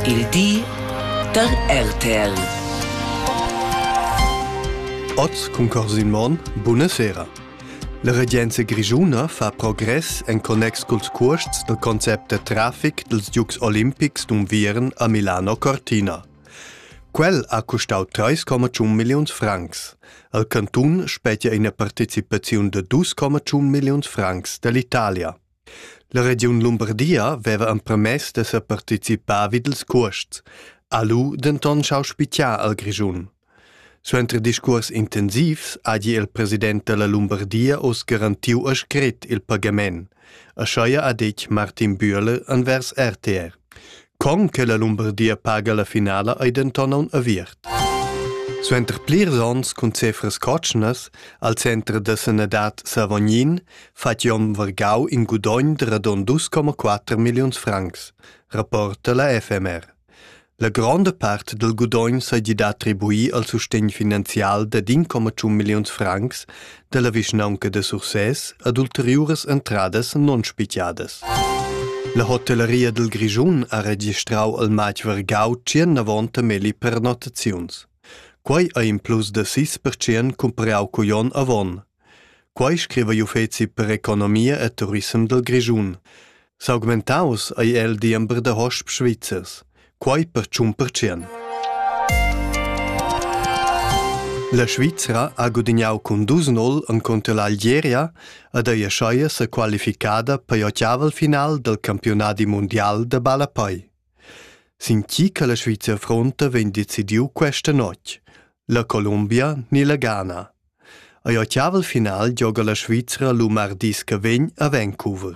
Il di da RTL. Oz concorsi in mon, buonasera. La regenza grischuna fa progress en connex culs cuosts dal concept da traffic dels Dukes Olympics d'Unviern a Milano-Cortina. Quel ha costau 3,1 milliuns francs. Al cantun spetia ina partecipaziun de 2,1 milliuns francs dall'Italia. La regiun Lumbardia veva empermess da separticipar vid ils cuosts, ha lu denton schau spitgar al Grischun. Suenter discuors intensivs hagi il president dalla Lumbardia oz garantiu a scret il pagament, aschia ha detg Martin Bühler envers RTR. Con che la Lumbardia paga la finala ei denton aun aviert. Suenter plirs onns cun cefras cotschnas al center da sanadad Savognin fa Jon Vargau in gudogn de radon 2,4 milliuns francs, rapporta la FMR. La gronda part del gudogn sei gida attribui al sustegn finanzial de 1,1 milliuns francs dalla vischnaunca da Sursès ad ulteriuras entradas non spitiadas. La hotellaria dal Grischun ha registrau al matg vargau tschernavonta meli pernottaziuns. Quei ei in plus da 6% cumparau cugl onn avon. Quei scriva gl'uffeci per economia e turisem dal Grischun. S'augmentaus ei el diember da hosps svizzers, quei per tschun percent. La Svizra ha gudignau cun dus nol encunter l'Algeria ed ei aschia sa qualificada per ottaval final del campionadi mundial da ballapei. Sin chi che la Svizra fronta vegn decidiu questa notg, la Colombia ni la Ghana. Ei ottaval final gioga la Svizra lu mardis che vegn a Vancouver.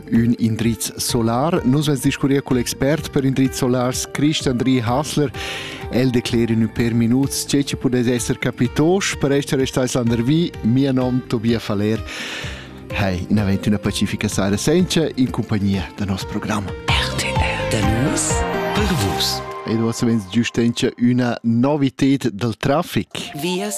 Ün indriz solar. Nus vais discurrir col expert per indriz solars Christ Andri Hasler. El declera in per minuts tge che pudes esser capitosch per essere restais landervi. Mio nom Tobias Faller. Hai, in avent una pacifica sera senza in compagnia del nostro programma. RTR. Da nus per vus. Ed ora savens giustentia una novität del traffic. Vias